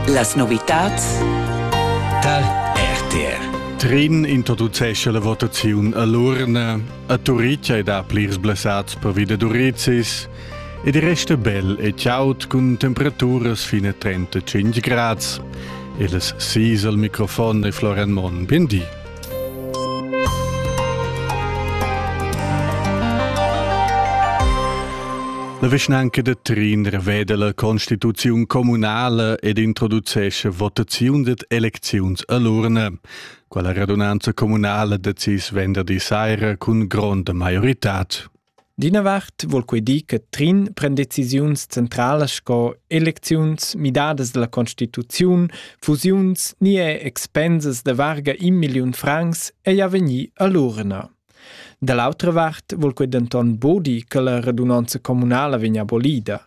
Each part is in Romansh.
Las novitads tar RTR. Trin introducescha la votaziun a l'urna. A Turitg è da plirs blessats pervi da durizis ed resta bel e chaud cun temperaturas fino a 35 grads. Il sis al microfon è Florian Monn. Bien di. La vischnanca da Trin reveda la constituziun communala ed introducescha votaziun dad elecziuns a l'urna. Quella radunanza communala decis venderdi saira cun gronda maioritad. D'ina vart vul quei dir che Trin pren decisiuns centralas sco elecziuns, midadas dalla constituziun, fusiuns ni er expensas da varga in milliun francs ei a vegnir all'urna. Da l'autra vart vul quei denton bodi che la radunanza communala vegn abolida.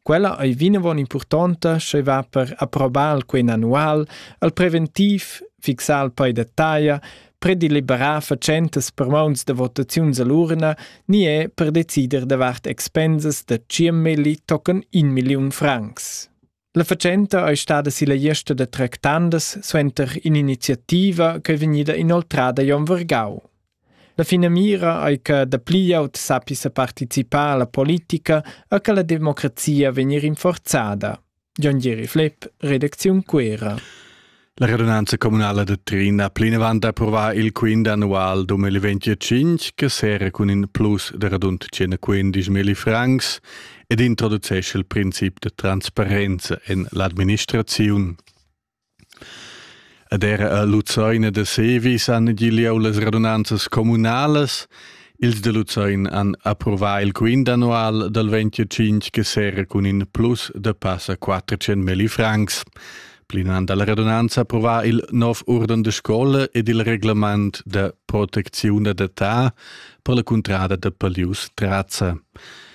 Quella ei vinavon impurtonta sch'ei va per approbar quei annual al preventiv fixar il pei da taglia predeliberar fatschentas per mauns da votaziuns all'urna ni è per decider davart expensas da 10 milli tocken 1 milliun francs. La fatschenta è stada silla gliesta da tractandas suenter in'iniziativa che è vegnida inoltrada Jon Vergau. La finamira è che dapli aut sappia partecipare alla politica e che la democrazia vegni rinforzada. Jon Gieri Flepp, redacziun Cuera. La radunanza communala de Trin ha plinavant approva il quint annual 2025 che sera cun in plus de radund 115.000 francs ed introducesce il princip de transparenza en l'administraziun. Ed era a Luzein ed a Sevis han gi lieu las radunanzas communalas. Ils da Luzein han approvà il quint annual dal 25 che serra cun in plus da passa 400 milli francs. Plinant dalla radunanza approvà il nov urden de scola ed il reglement da protecziun d'adatà per la cuntrada da Palius Trazza.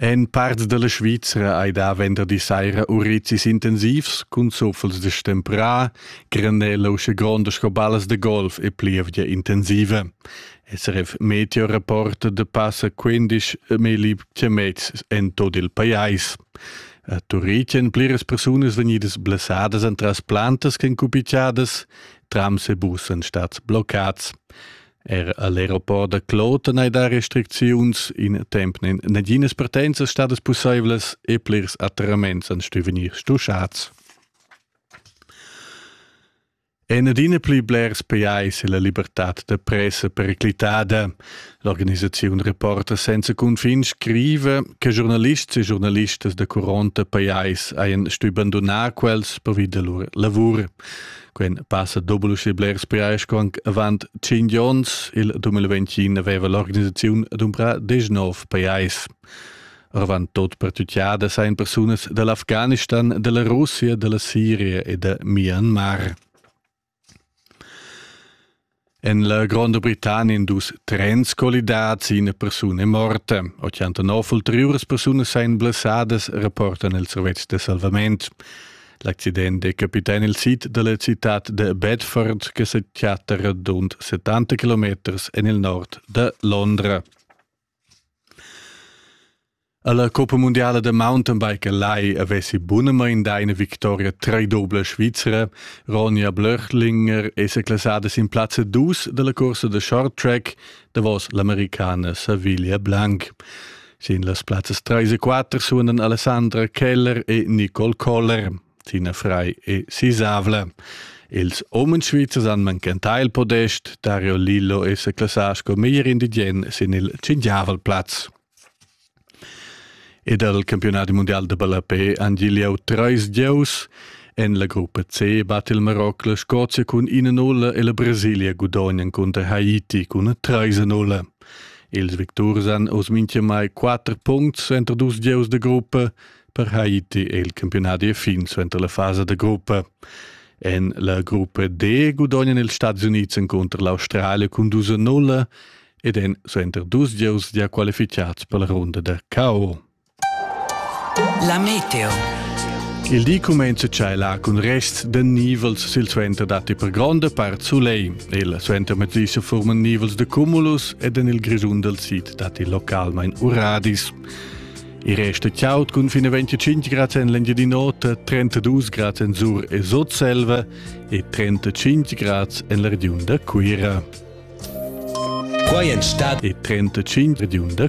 En part dalla Svizra ei da venderdi saira urizis intensivs cun zuffels de stempra, granella usche gronda sco ballas de golf e plievgia intensiva. SRF Meteo rapporta de passa 15 mili chiamets en tot il pajais. A Turicen pliras persunas vegnidas blessadas entras plantas ch'en cupichadas, trams e bussen stat bloccats. Er all'aeroport da Kloten hai dà restricziuns. In temp n'en naginas partenzas stadas pussaivlas e plirs atterraments han stu vegnir stuschads. En adina pli blers pajais è la libertad da pressa periclitada. L'organisaziun Reporter senza cunfin scriva che giornalists e giornalistas da curonta pajais hajan stu bandunar quels pervi da lur lavur. Quen passa doble uschè blers priais co anc avant 5 ons. Il 2021 aveva l'organisaziun dumbrà 19 pajais. Avant tot per tutjada sain persunas dall'Afghanistan, della Russia, della Siria e da Myanmar. En la Gronda Britannia in dus trens collidads, ina persuna è morta. 89 ulteriuras persunas ein blessadas, rapportan il servetsch de salvament. L'accident è capità il sid della città de Bedford, che si chatta radund 70 km en il nord de Londra. Alla Coppa mundiala da mountainbike lai avessi bunamain dà ina victoria treidobla svizra. Ronja Blöchlinger è seclassada sin plazza dus dalla corsa da short track davos l'americana Saviglia Blanc. Sin las plazzas 3 e 4 suonan Alessandra Keller e Nicole Koller. Tina Frei e Sisavla. Ils umens svizzers han manchentà il podest, Dario Lillo e sa classà sco meglier indigen sin il cinquiavel plaz. E dal campionat mundial da ballapé han gigliau treis gieus. En la gruppa C bat il Maroc la Scozia cun ina nulla e la Brasilia gudognan cunter Haiti cun una treisa nulla. Ils victurs han oz mintgamai quatter puncts entro dus gieus de gruppa, Per Haiti è il campionadi fin suenter la fasa da gruppa. En la gruppa D gudognan ils Stati Unids encunter l'Australia cun 2 a 0 ed en suenter dus gieus gia qualificads per la runda da KO. La Meteo. Il di cumenza là cun rests da nivels silsuenter datti per gronda part soleil. Il suenter matisa forman nivels da cumulus ed en il Grisun dal sid datti localmain uradis. I resta chiaut cun fin a 25 grad en l'Engiadin'Ota, 32 grad en Sur e Sotselva e 35 grad en la regiun da Cuira. Quai è stata e 35 regiun da